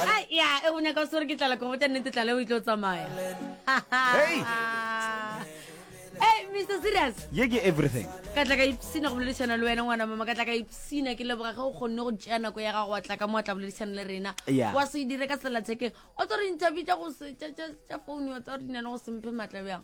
Ai, ya, e go nyaka o swere ke tlala kobo tša nnete tlala o itlo tsamaya Hey! Hey, Mr. Serious ye ke everything ka tla ka ipsina go boledišana le wena ngwana mama ka tla ka ipsina ke leboga ge o kgonne go tšea nako ya gago wa tla ka mo wa tla boledišana le rena Yeah. wa se e dire ka sellathekeng o tsa re interview tša go se- tša- tša- tša phone wa tsa re di na le go semphe maatla bjang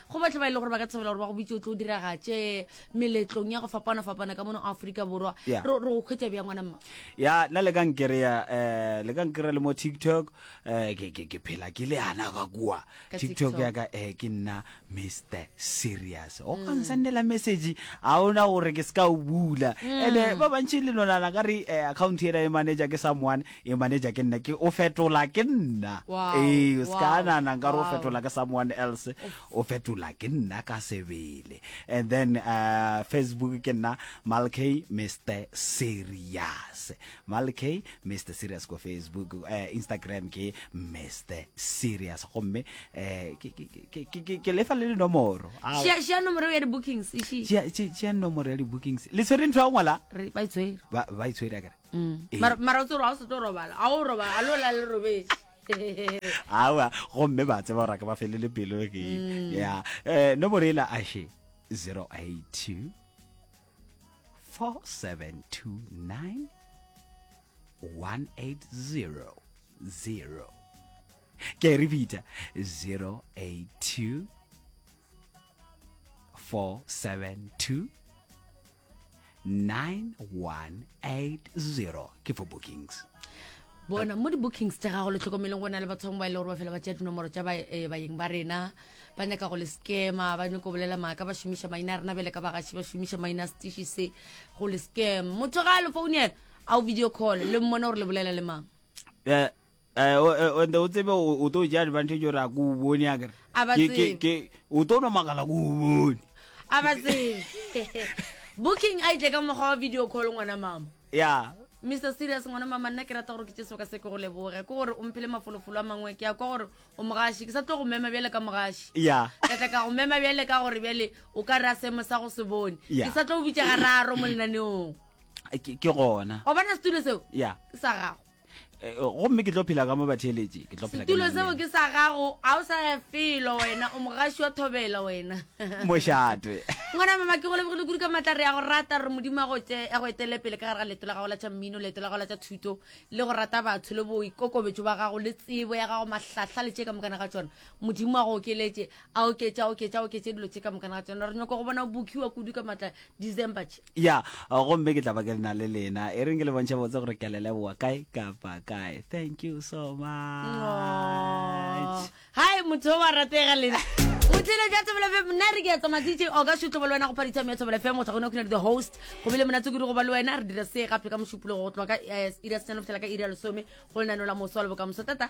go batho ba e le gore ba ka tshabela gore ba go bitse o tlo o diragatše meletlong ya go fapana-fapana ka mono aforika borwa Yeah. re re go kgwetsa bjang ngwana mma ya nna le ka nkereya um le ka nkereya le mo tiktok um ke ke- ke phela ke le ana ka kua Ka tiktok TikTok. ya ka um ke nna mr serious o ka nsendela message ga ona gore ke se ka o bula ande ba bantšhi le lonana ka re um account ena e manager ke someone Ee, manager ke nna, ke o fetola ke nna. Wow, Ee, o ska wow, nana nka re o wow. fetola ke someone else. O fetola ke nna ka sebele. And then uh, Facebook ke nna Malkey Mr Serious. Malkey Mr Serious ko Facebook, uh, Instagram ke Mr Serious. Gomme eh ke ke ke ke- ke ke lefa le dinomoro. Ah, Share- share nomoro ya di-bookings e šii. tšea- tšea- tšea nomoro ya di-bookings. Le tshwere ntho ya go ngwala? Re- ba e tshwere. Ba ba e tshwere akere? Mm. Eh. Mara- mara o tsere ga o se tlo robala ga o robala a lo la le robetse awa gomme ba tseba gore a ka ba felele pelo ke ya um nomoro ela ashe 082 4729 1800 ke a e repeata 082 472 9180 ke for bookings bona mo di-bookings tsa gago le tlhokomeleng go na le bathong ba e le gore ba fela ba tšea dinomoro tša eh, bayeng ba rena ba nyaka go le scama ba nyako bolela maaka ba šomiša maina a rena bele ka bagaši ba šomiša maina a setiši se go le scam motho ga a le founela a o video call le mmone gore le bolela le mang eh, Eh, o- eh, and o tsebe o o tlo ja advantage gore a ko o bone a kere A ba Ke- ke- tsebe. ke- o tlo no makala ko o bone a ba tsebe booking a itle ka mokgwa wa video call ngwana mama ya mr serious ngwana mama nna ke rata gore ke tse seboka se ke go leboge ke gore o mphele mafolofolo a mangwe ke ya kwa gore o mogashi ke sa tlo go mema bjale ka mogashi ya ka tla ka go mema bjale ka gore bjale o ka re a seemo sa go se bone Ya. ke sa tlo go bitsa gararo mo lenaneong ke ke gona o bona setulo seo ya ke sa gago Eh, eh, gomme ke tlo phela ka mo batheletše ke tlo phela setulo seo ke sa gago a o sa ya felo wena o mogaši wa thobela wena mošatwe ngwana mama ke go lebogile kudu ka maatla re ya go rata re modimo a go etele pele ka gare ga leto la gago la tša mmino leto la gago la tša thuto le go rata batho le boikokobetso ba gago le tsebo ya gago mahlahla le tše ka mokana ga tsona modimo a go okeletše a oketše a oketše a oketše dilo tše ka mokana ga tsona re nyako go bona bokiwa kudu ka maatla december ya gomme ke tla ba ke le na le lena e reng ke le bontšha botse gore ke a le leboa kae kapa kae thank you so much hai motho o wa ratega lena o tlile ja tsebele fe nna re ke ya tsamaya dj oka šutlobo le wena go phaditsa me ya tsebele fe motho gone o khona le the host go bile monatse kudu go ba le wena re dira se gape ka mošupologo go tloga ka eh, iri ya senano fela ka iri ya lesome go lenano la moso wa lebokamoso tata